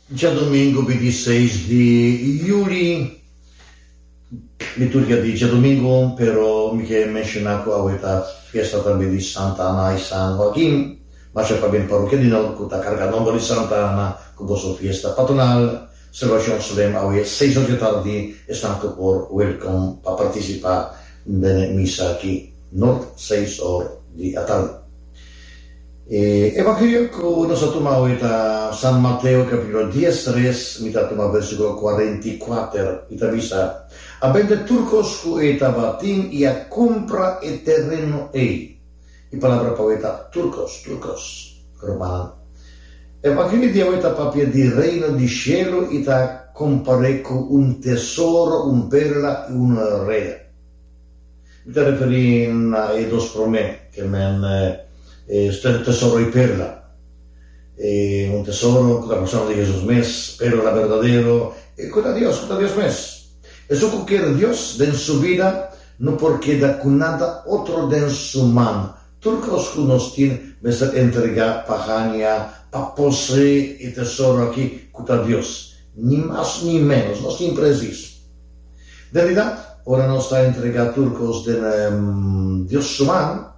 Djadomingu bintiseis di Juli, mi tur ke a di djadomingu, pero mi ke menshoná ku awe ta fiesta tambe di Santa Ana i San Hoakin. Masha pabia e parokia di nan ku ta kargá nòmber di Santa Ana ku boso fiesta patronal. Salvacion Slim awe seis ora di tardi esnan cu por welcom pa participa den e misa aki nort seis or di atardi. E Evangelio cu nos ta tuma awe ta San Mateo capitulo dies res mi ta tuma versiculo cuarenta y cuater y ta bisa, A bende tur cos cu e tabatin y a cumpra e tereno ey. E palabra pa we ta Turcos, Turcos, rumannan. E papia di Dia we ta papia di Reino di Shelu i ta kompar'é ku un tesoro, un perla i un rea. Mi ta referí na e dos promé, ke men studia tesoro i perla. E un tesoro ku ta persona di Hesus mes, perla berdadero, ku ta Dios, ku ta Dios mes. Esun ku kier Dios den su bida. No por keda ku nada otro den su man. Tur kos ku nos tin mester entregá pa haña, pa poseé e tesoro akí ku ta Dios. Ni mas ni ménos. Nos tin presis. Realidat, ora nos ta entregá tur kos den Dios su man,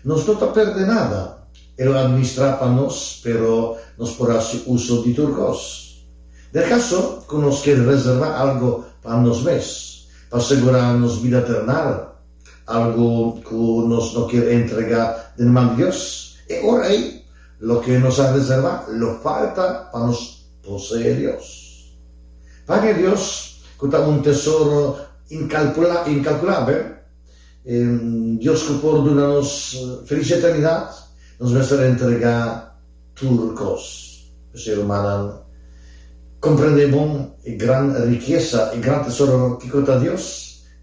nos no ta pèrdè nada. E lo administrá pa nos, pero nos por hasi uso di tur kos. Den e kaso ku nos ke reservá algu pa nos mes, Pa segurá nos bida ternal, algu ku nos no kier entregá den man di Dios, e ora ei loke nos a reservá lo falta pa nos poseé Dios. Paña Dios, ku ta un tesoro inkalpulá inkalkulabel, e Dios ku por duna nos felis eternidat, nos mester entregá tur kos. P'esei, rumannan, komprendé bon e gran rikesa, e gran tesoro kiko ta Dios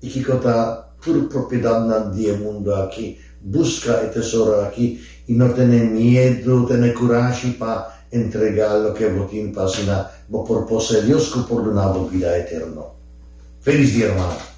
i kiko ta tur propiedatnan di e mundu aki. Buska e tesoro aki i no tene miedu, tene kurashi pa entregá loke bo tin pa asina bo por posé Dios ku por duna bo bida eterno. Felis dia, rumannan!